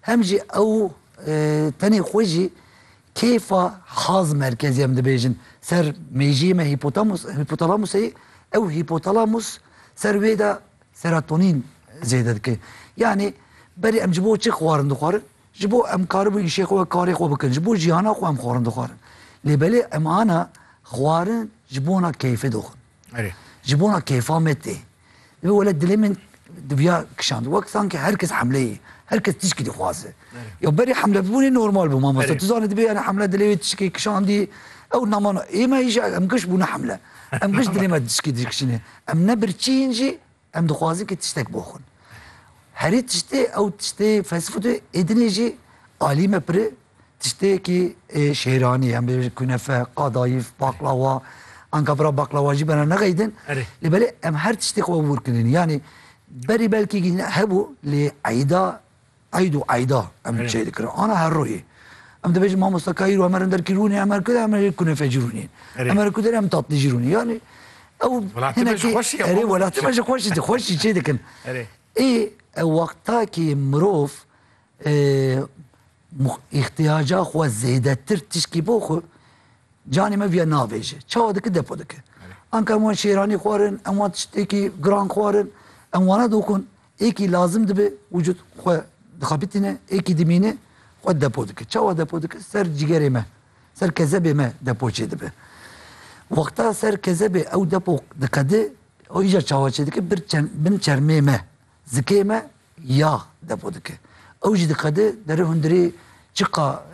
Hem jî ew tenê xwe jî kêfa haz merkezî em dibêjin ser mêjiyê me hîpotalamusê ye, ew hîpotalamus ser wê de serotonîn zêde dike. Yanî berê em ji bo çi xwarin dixwarin? Ji bo em karibû îşê xwe we karê xwe bikin, ji bo jîhana xwe em xwarin dixwarin. Lê belê em ana xwarin ji bona keyfê dixwin. Erê. Ji bona kêfa me tê. Divê wele dilê min diviya kişand. Wek sanki her kes hemleyê, her kes tişkî dixwaze. Ya berê hemle bûnê normal bû mamosta. Tu zanî dibê yani hemle dilê wê tişkî kişandî. Ew namana ême îşe em giş bûne hemle. Em giş dilê me tişkî dikişîne. Em ne birçîn jî Em dixwazin ke tiştek bo xwe herî tiştê ew tiştê fast food e, êdinê jî alî me piri tiştêkî ê şêranî em bêjin kunefe, qadayîf, baklawa, anka bira baklawa jî bena nexeydin. Erê. Lê belê em her tiştê xwe wûr kirin. Yanî berî belkî hebû lê eyda Eyd û eyda em çêy dikirin. Ana her royê. Em dibêjin mamosta ka îro em herin derkî rûnê em her ku de em herê kunefecî rûnê. Em her ku de em tatlîjî rûnê. Yanî ew hinekî erê welatê me ji xweşî di xweşî çê dikin. Ê ew wextakî mirov îxtiyaca xwe zêdetir tişkî bo xwe canê me viya navêje. Çawa dike depo dike. Anka em wan şêranî xwarin, em wan tiştekî giran xwarin, em wana doxin. Êkî lazim dibe wicûd xwe dixebitîne, êkî dimîne xwe depo dike. Çawa depo dike? Ser cîgerê me, ser kezebê me depo çêdibe. Wexta ser kezebê ew depo diqede, ew îcar çawa çêdike? Bir bin çermê me, zikê me yah depo dike. Ew jî diqede, derê hundirê Çiqa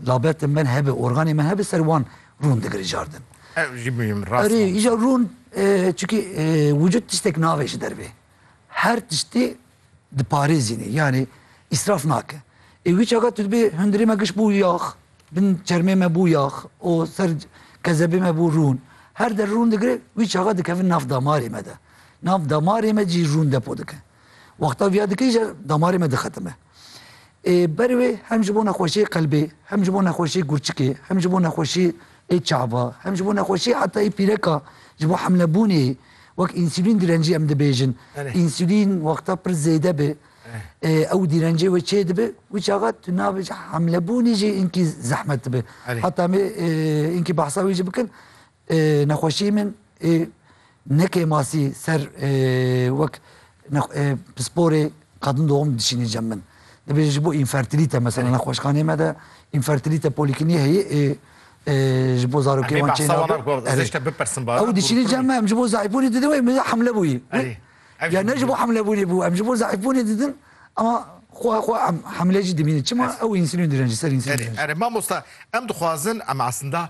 labetên me hebe, organên me hebe ser wan rûn digire cardin. Ew jî muhîm rast. Erê îja rûn çikî wicûd tiştek navê ji dervê. Her tiştê diparêzînê yanî îsraf nake. Ê wî çaka tu dibê hundirê me giş bû yax, bin çermê me bû yax û ser kezebê me bû rûn. Her der rûn digire wî çaka dikevin nav damarê me de. Nav damarê me cî rûn depo dike. Wexta viya dike îja damarê me dixetime. Ber wê hem ji bo nexweşiyê qelbê, hem ji bo nexweşiyê gurçikê, hem ji bo nexweşiyê çava, hem ji bo nexweşiyê heta yê pîreka ji bo hemlebûnê wek însulîn direncî em dibêjin. Însulîn wexta pir zêde be ew dîrencê wê çê dibe wî çaxa tu nabêjî hemlebûnê jî înkî zehmet dibe. Heta em ê înkî behsa wî jî bikin Nexweşiyê min neke masî ser wek pisporê qadin doğum dişînê cem min. Dibêje ji bo înfertilîte mesela nexweşxaneyê me de înfertilîte polîklinîk heye ji bo zarokê wan çê nabe. Ew dişînê cem me em ji bo zeîfbûnê didin wê min hemle bûyî. Ya ne ji bo hemlebûnê bû em ji bo zeîfbûnê didin ama xweha xwe em hemle jî dibînin. Çima ew însulîn dirin ji ser însulîn. Erê mamosta em dixwazin em eslinda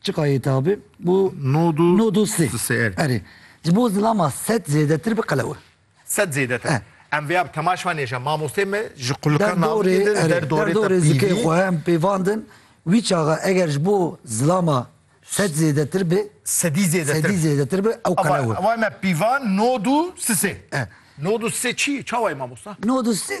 Çiqa yê tabi bu nodu nodu si si er. Erê. Ji bo zilama sed zêdetir bi qelewe. Sed zêdetir. E. Em vêya bi temaş van nêje mamostê me ji qulika navê de der dorê dorê zikê xwe em pêvandin wî çaxa eger ji bo zilama sed zêdetir bi sedî zêdetir sedî zêdetir bi ew qelewe. Ewa me pîvan nodu sisê. E. Nodu sisê çi çawayê mamosta? Nodu sisê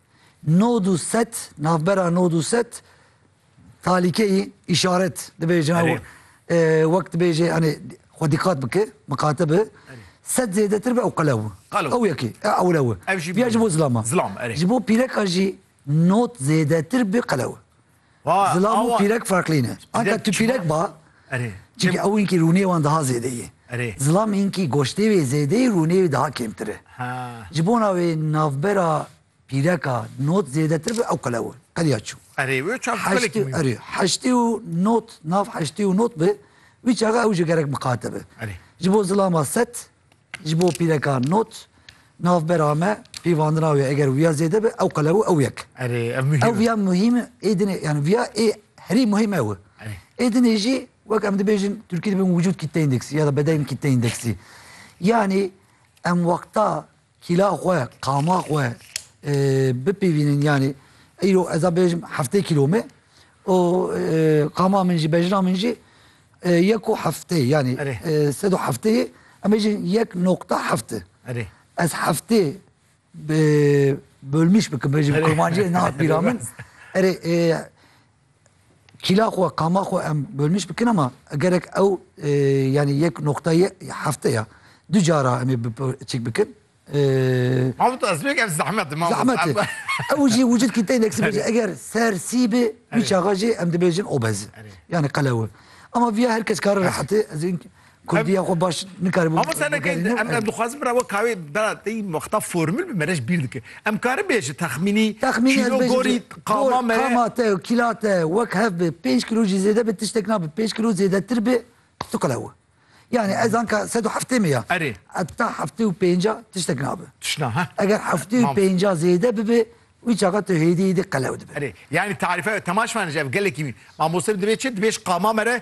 Nod û set, navbera nod û set talîkeyî, îşaret dibêjin ew Erê. e, wek dibêje yanê xwe dîqat bike, miqate bi. Set zêdetir be ew qelew. Qelew. Ew yekê, e ewle wi. Ev jî Viya ji bo zilama. Zilam, erê. Ji bo pîreka jî not zêdetir bi qelew. Zilam û pîrek farqlî ne. Anka tu pîrek ba, çimkî ew hinkî rûniyê wan diha zêde ye. Zilam hinkî goştê wê zêde ye, rûniyê wê diha kêmtir e. Ji bona wê navbera pîreka not zêdetir be ew qelew e. Qeliya çû. Heştê û not, nav heştê û not be, wî çaxa ew ji gerek miqate be. Ji bo zilama set, Ji bo pîrekan not, navbera me pîvandina wê eger wiya zêde be ew qelew ew yek. Erê ev muhîm. Ew wiya muhîm e ê dinê yani wiya ê herî muhîm ew e. Ê dinê jî wek em dibêjin Tirkî dibin wicûd kitle îndeksî ya da bedeyn kitle îndeksî. Yanî em wexta Kîla xwe, qama xwe bipîvînin yanî îro ez a bêjim heftê kîlo me û qama min jî bejna min jî yek û heftê yanî sed û heftê ye em bêjin yek noqta heft e. Erê. Ez heftê bölmîş bikim bêjim kurmanciyê ne hat bîra min. Erê Kîla xwe, qama xwe em bölmîş bikin ama gerek ew yanî yek noqtayê hefteya du cara em ê çik bikin. Mafût Azmêk ev zehmet e Mafût. Zehmet e. Ew jî wicîd kî teynek sibê jî eger ser sî bê wî çaxa jî em dibêjin obez e. Yanî qelew e. Ama viya her kes kare rehet e ez ê Kurdiya xwe baş nikaribû. Mamosta ne key em em dixwazin bira we kawê bira tey wexta formül bi merej bîr dike. Em karin bê ji texmînî Texmînî ez bêjim gorî qama me qama te û kîla te wek hev bi 5 kilo jî zêde bi tiştek nabe 5 kilo zêdetir bi tu qelewe. Yani ez anka 170 mi ya. Erê. Etta 75 tiştek nabe. Tişna ha. Eger 75 zêde bibe wî çaxa tu hêdî hêdî qelew dibe. Erê. Yani tarife temaş vanij ev gelekî mamosta dibê çi dibêj qama mere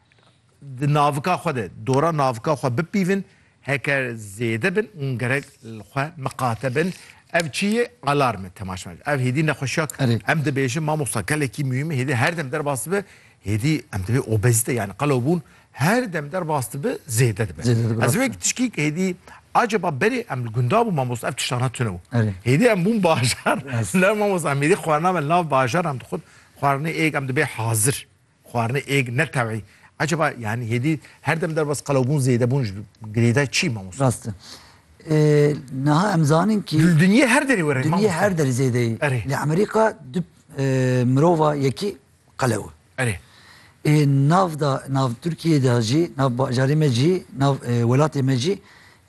di navika xwe de dora navika xwe bipîvin heke zêde bin û gerek li xwe miqate bin. Ev çi ye? Alarm e temaşe. Ev hêdî nexweşiya em dibêjin mamosta gelekî muhîm e hêdî her dem derbas dibe hêdî em divê obezîte yani qelewbûn her dem derbas dibe zêde dibe. Ez wek tişkî hêdî acaba berê em li gunda bû mamosta ev tiştana tune bû. Hêdî em bûn bajar ne mamosta em hêdî xwarina me nav bajar em dixwin xwarinê êk em dibê hazir. Xwarinê êg ne tewî. Eceba yani hêdî her dem derbas qelewbûn zêdebûn ji girêdayê çî mamosta? Rast e. Niha em zanin kî Li dinyê her derê were mamosta. Dinyê her derê zêdeyî. Erê. Li Emerîka du mirova yekî qelew e. Erê. Ê nav da nav Tirkiyeyê de jî nav bajarê me jî nav welatê me jî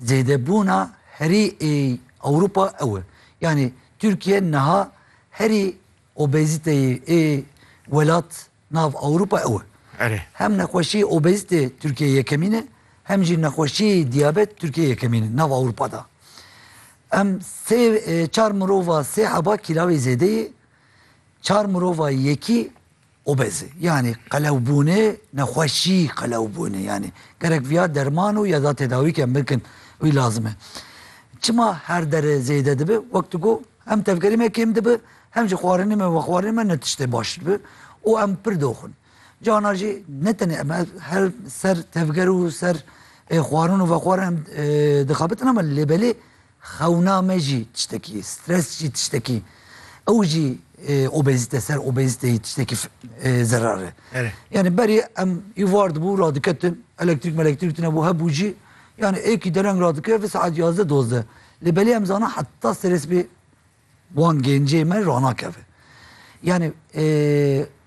zêdebûna herî ê Ewropa ew e. Yanî Tirkiye niha herî Obezîteyê ê welat nav Ewropa ew e. Hem nexweşiyê obezîte Tirkiyeyê yekemîn e, hem jî nexweşiyê dîyabet Tirkiyeyê yekemîn e nav Ewropa de. Em sê çar mirova sê heba kîlawê zêde yê, çar mirova yekî Obezi, yanî qelewbûnê, nexweşî qelewbûnê yanî gerek viya derman û ya da tedawîke mirkin wî lazim e. Çima her dere zêde dibi? Wek tu got hem tevgerî me kêm dibi hem jî xwarinê me vexwarinê me ne tiştê baş dibi û em pir doxin. Cana jî ne tenê em her ser tevger û ser xwarin û vexwarin em dixebitin ama lê belê Xewna me jî tiştekî ye, stres jî tiştekî ew jî obezîte ser obezîteyî tiştekî zerar e. Yanî berê em îvar dibû radiketin elektrîk melektrîk tunebû hebû jî yanî êkî dereng radikeve saet yazdeh dozdeh lê belê em zana heta serê sibê Wan gencê me ranakeve. Yani e,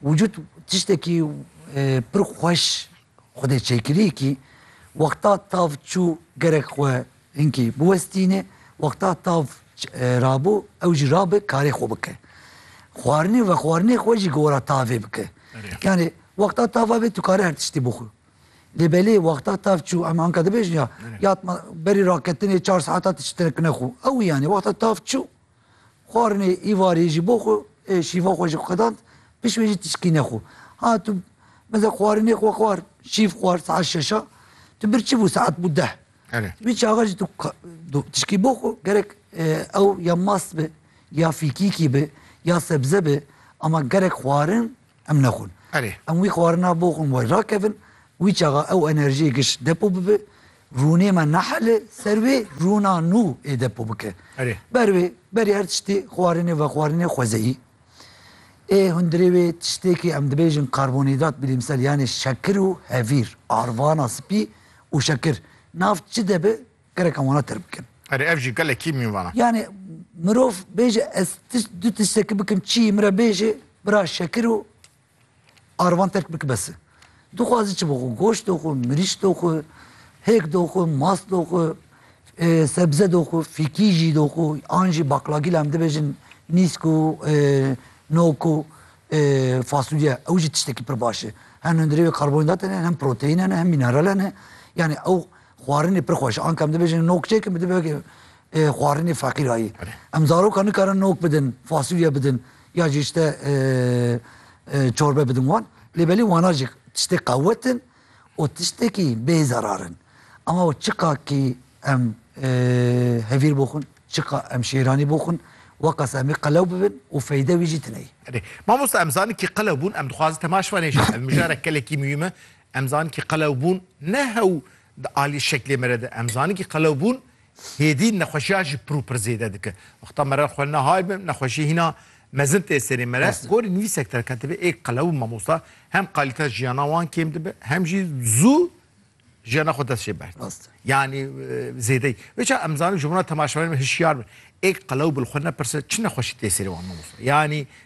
vücut tiştekî e, pir xweş xwedê çêkirî kî wexta tav çû gerek xwe hinkî biwestîne, wexta tav e, rabû ew jî rabe karê xwe bike. Xwarinê ve xwarinê xwe jî gora tavê bike. Yani wexta tava bê tu kare her tiştî bixwe. Lê belê wexta tav çû em anka dibêjin ya ya berî raketinê çar saeta tu çi terekine xwe. Ewî yanî wexta tav çû xwarinê îvarê jî bo xwe ê şîva xwe jî xedand pişt wê jî tu çikîne xwe. Ha tu mesela xwarinê xwe xwar şîv xwar saet şeş a tu bir çi bû saet bû deh. Wî çaxa jî tu tişkî bo xwe gerek ew ya mast be ya fîkîkî be ya sebze be ama gerek xwarin Em nexwin. Erê. Em wî xwarina bo xwin way rakevin, wî çaxa ew enerjiyê giş depo bibe, rûnê me nehele ser wê rûna nû ê depo bike. Erê. Ber wê, berê her tiştê xwarinê vexwarinê xwezeyî. Ê hundirê wê tiştêkê em dibêjin karbonîdrat bilîmsel yanê şekir û hevîr, arvana spî û şekir. Nav çi de be, Gerek wana tir bikin. Erê ev jî gelekî mîn vana. Yani mirov bêje ez tişt du tiştekî bikim çî min re bêje bira şekir û arvan terk bik bes e. Dixwazî çi bixwe goşt doxwe, mirîç doxwe, hêk doxwe, mast doxwe, sebze doxwe, fîkî jî doxwe, an jî baklagîl em dibêjin nîsk û nok û fasulye ew jî tiştekî pir baş e. Hem hundirê wê karbonhîdrat hene hem proteîn hene hem mîneral hene. Yani ew Xwarinê pir xweş anka em dibêjin nok çêkin bi dibe xwarinê feqîrayî. Em zarokan nikarin nok bidin, fasulye bidin ya jî işte çorbe bidin wan. Lê belê wana jî tiştê qewet in û tiştekî bê zerar in. Ama we çiqa kî em hevîr bo xwin, çiqa em şêranî bo xwin weqas em ê qelew bibin û feyde wî jî tune yî. Erê. Mamosta em zanin kî qelew bûn em dixwazin temaş venê jî ev mijarek gelekî muhîm e. Em zanin kî qelewbûn ne hew di aliyê şeklê me re de, em zanin kî qelewbûn hêdî nexweşiya jî pir û pir zêde dike. Wexta me re xwe nehay be, nexweşî hîna mezin tê serê me re. Gorî nivîsek derketibe ê qelew û mamosta hem qalîteya jiyana wan kêm dibe hem jî zû jiyana xwe dest jê berd. Rast e. Yanî zêdeyî. Vê çav em zanin ji wan re temaşevanên me hişyar bin. Ê qelew bi li xwe nepirse çi nexweşî tê serê wan mamosta? Yanî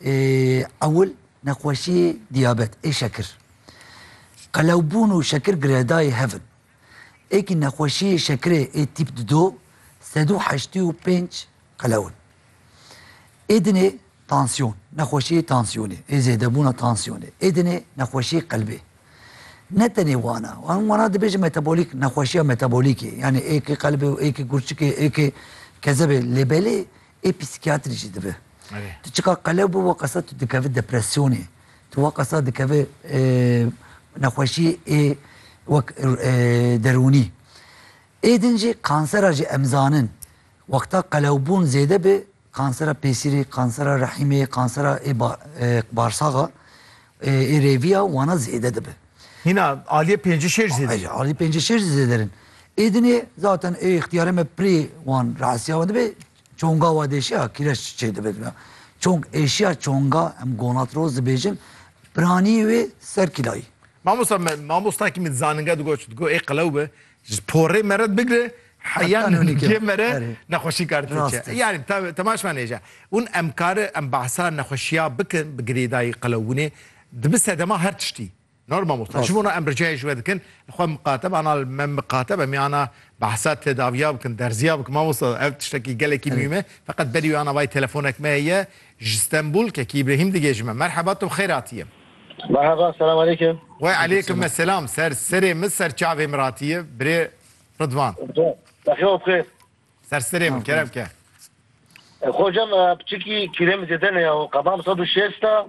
Ewil nexweşiyê diyabet ê şekir. Qelewbûn û şekir girêdayî hev in. Êkî nexweşiyê şekirê ê tîp di do sed û heştî û pênc qelew in. Ê dinê tansiyon, nexweşiyê tansiyonê ê zêdebûna tansiyonê. Ê dinê nexweşiyê qelbê. Ne tenê wan a. Wan wana dibêjin metabolîk nexweşiya metabolîkê. Yanî êkê qelbê û êkê gurçikê êkê kezebê lê belê Ê psîkiyatrî jî dibe. Tu çika qelew bû wa qasa tu dikevî depresyonê. Tu wa qasa dikevî nexweşî ê wek derûnî. Ê din jî kansera jî em zanin wexta qelewbûn zêde be kansera pêsîrê, kansera rehîmê, kansera ê barsaxa ê rêvî ya wana zêde dibe. Hîna aliyê pêncî şêj zêde ye. Aliyê pêncî şêj zî zêde in. Êdinê zaten ê îxtîyarê me pirê wan re'siya wan dibe çonga wa dêşiya kîreç çêdibe dibe. Çong êşiya çonga em gonatroz dibêjin piranî wê ser kîlayî. Mamosta me mamostakî min zaninga digot digo ê qelew bi ji porê me re bigire heya nûnîkê me re nexweşî kar tê çi. Yanî temaşvanê je. Hûn em kare em behsa nexweşiya bikin bi girêdayî qelewbûnê Dibi sedema her tiştî. Nor mamosta. Ji bona em ricayê ji we dikin, li xwe miqateb ana li me miqatebe miyana behsa tedaviya bikin, derziya bikin mamosta. Ev tiştekî gelekî muhîm e. Feqet berî wê ana vay telefonek me heye ji Stenbûl Kekî Îbrehîm digê ji me. Merheba tu bi xêr hatiyê. Merheba selam aleykim. We aleykim eselam ser serê min ser çavê min hatiyê birê Ridvan. Bexya bi xêr. Ser serê min kerem ke. Xocam piçikî kîlê min zêde neya û qebam sed û şêst e.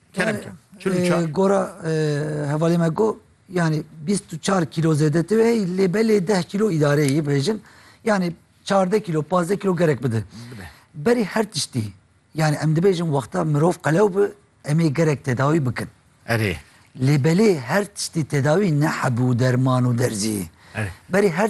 Kerem ke. Çil û çar. Gora hevalê me got yanî bîst û çar kîlo zêdetir e lê belê deh kîlo îdareyê yê bibêjin. Yanî çardeh kîlo, pazdeh kîlo gerek bide. Berî her tiştî yanî em dibêjin wexta mirov qelew bi em ê gerek tedawî bikin. Erê. Lê belê her tiştî tedawî ne heb û derman û derzî ye. Erê. Berî her